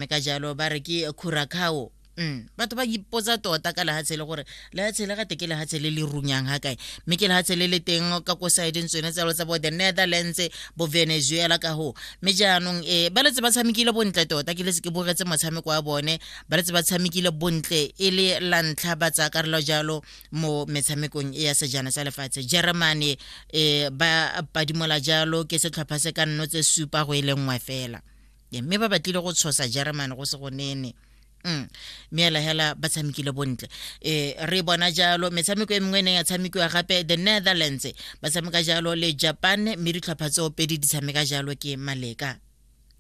mme ka jalo ba re ke curacao Mm. batho ba ipotsa tota ka lehatshe le gore lehatshe le gate ke lehatshe le le runyang ga kae mme ke lehatshe le le teng ka ko sideng tsone tsalo tsa bo the netherlands bo venezuela ka go mme jaanong e ba letse ba tshamekile bontle tota ke letse ke bogetse motshameko wa bone ba letse ba tshamekile bontle e le la ntlha ba tsaya karolo jalo mo metshamekong e ya sejana sa lefatshe germany e ba padimola jalo ke setlhopha se ka nno tse supa go e le nngwe fela mme ba batlile go tshosa germany go se go nene Mm. meela hela ba tshamekile bontle e re bona jalo metshameko e mengwe e neng ya tshamekiwa gape the netherlands ba tshameka jalo le japan mme ditlhopha tseo pedi di tshameka jalo ke maleka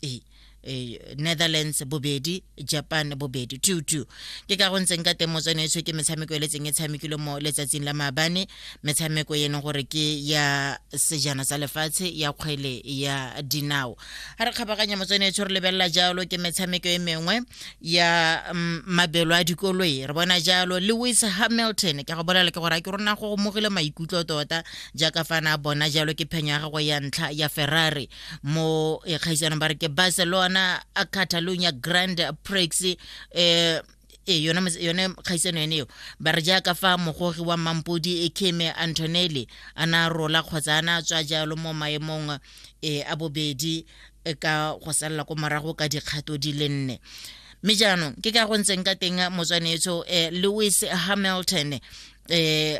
ee e, netherlands bobedi japan bobedi two two ke ka go ntseng ka teng motsone etsho ke metshameko e le tseng e tshamekile mo letsatsing la maabane metshameko e leng gore ke ya sejana sa lefatshe ya kgwele ya dinao ga re kgabaganya motswene etsho re lebelela jalo ke metshameko e mengwe ya mm, mabelo a dikoloi re bona jalo lewis hamilton ke go bolela ke gore a ke rona go gomogile maikutlo tota jaaka fa na bona jalo ke phenyo ya gagwe ya ntlha ya ferrari mo eh, kgaisanong ba re ke barcelona a catalonia grand prix eh e yone mos- yone kgaisano yone eo ba re jaaka fa mogogi wa mampodi e keme antonelli a na rola kgotsa a na tswa jalo mo maemong e a bobedi e ka go salela ko morago ka dikgato di le nne mme jaanong ke ka go ntseng ka teng motswanetso eh, lewis hamilton eh,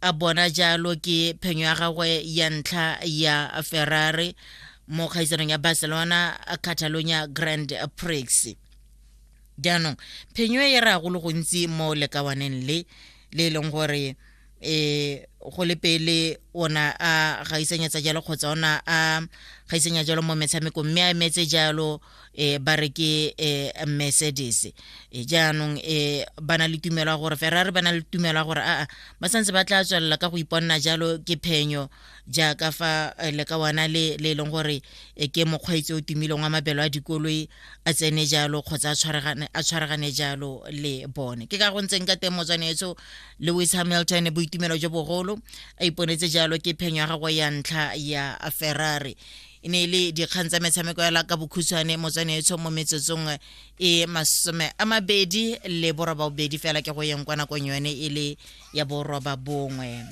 a bona jalo ke phenyo ya gagwe ya ntlha ya ferrari mo kgaisanong ya barcelona catalonia grand prix jaanong phenyo e raya go le gontsi mo lekawaneng le le e leng gore um go le pele ona a gaisanyetsa jalo kgotsa ona a gaisanya jalo mo metshamekong mme a emetse jalo um ba re ke um mercedes e jaanong um ba na le tumelo ya gore ferrari ba na le tumelo ya gore aa ba santse ba tla tswelela ka go iponna jalo ke phenyo jaaka fa eh, le ka wana le le e leng gore eh, ke mokgweetsi o timileng wa mabelo a dikoloi a tsene jalo kgotsa a tshwaragane jalo le bone ke ka go ntseng ka teng motswane etso lewis hamilton boitumelo jo bogolo a iponetse jalo ke phenyo ya gagwe ya ntlha ya ferrari e ne e le dikgang tsa metshameko ya laka bokhutshwane motswane etsho mo metsotsong e masome a mabedi le boroba bobedi fela ke go yeng kwa nakong yone e le ya boroba bongwe